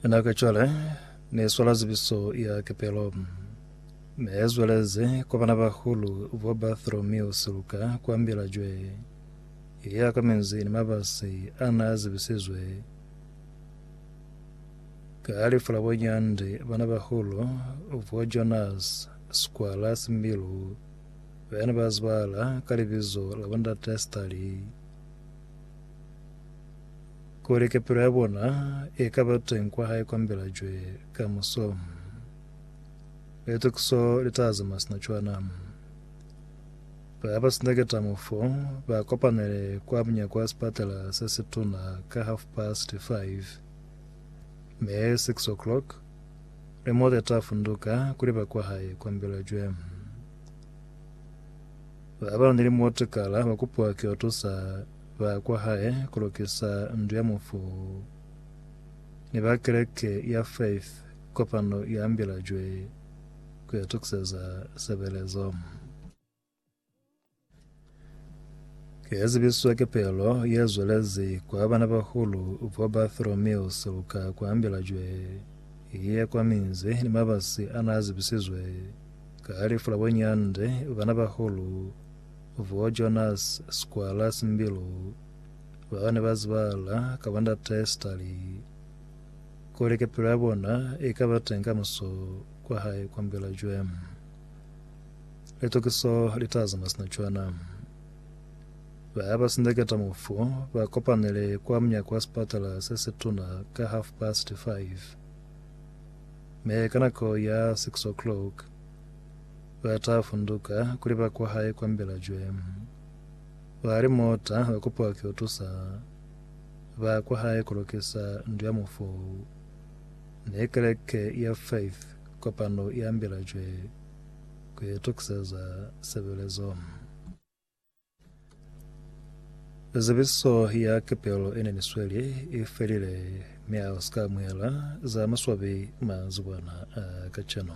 Ena ka cwale ne swala zibiso ya kepelo ne zweleze kwa bana bahulu bo Bartholomew Siluka kwa Mbilajwe ya ka menzi ni mabasi ana zibisizwe ka lifu la bonyandi bana bahulu bo Jonas Skwala Simbilu bene ba zibala ka libizo la bondate Stali Kuli kepelo ya bona i ka ba teng kwa hae kwa mbelajwe ka muso, litukiso li ta zama sina cwana. Ba ba sina ketamo fo ba kopanele kwa munyako wa sipatela se situna ka half past five, mi six o'clock remote ta funduka kuli ba kwa hae kwa mbelajwe. Ba ba na ni remote kala ba kupiwa ki yo tusa ba kwa hae ku lukisa ndu ya mufu, ni ba keleke ya Faith kopano i ambilajwe ku itukiseza sebelezo. Ki ye zibiswa kepelo ye zwelezi kwa banabahulu bo Bartholomew siluka ku ambilajwe i ye kwa minzi ni mabasi a n'a zibisizwe ka lifu la bo nyande banabahulu Bo Jonas Squalus Mbilu baka ne ba zibahala ka ba Ndate Stali kuli kepelo ya bona i ka ba teñi kamuso kwa hae kwa Mbilajwe. Litukiso li ta zama sina cwana. Ba ba sindeketa mufu ba kopanele kwa munyako wa sipatala se si tuna ka half past five. Me ka nako ya six o'clock, ba ta funduka kuli ba kwa hae kwa Mbelajwe. Ba li mota ba kupiwa ki utusa ba kwa hae ku lukisa ndu ya mufu. Ne keleke ya Faith kopano ya Mbelajwe ku itukiseza sebelezo. Zebiso ya kepelo ene ni sweli i felile mi a sika amuhela za maswabi manzibwana a kacenu.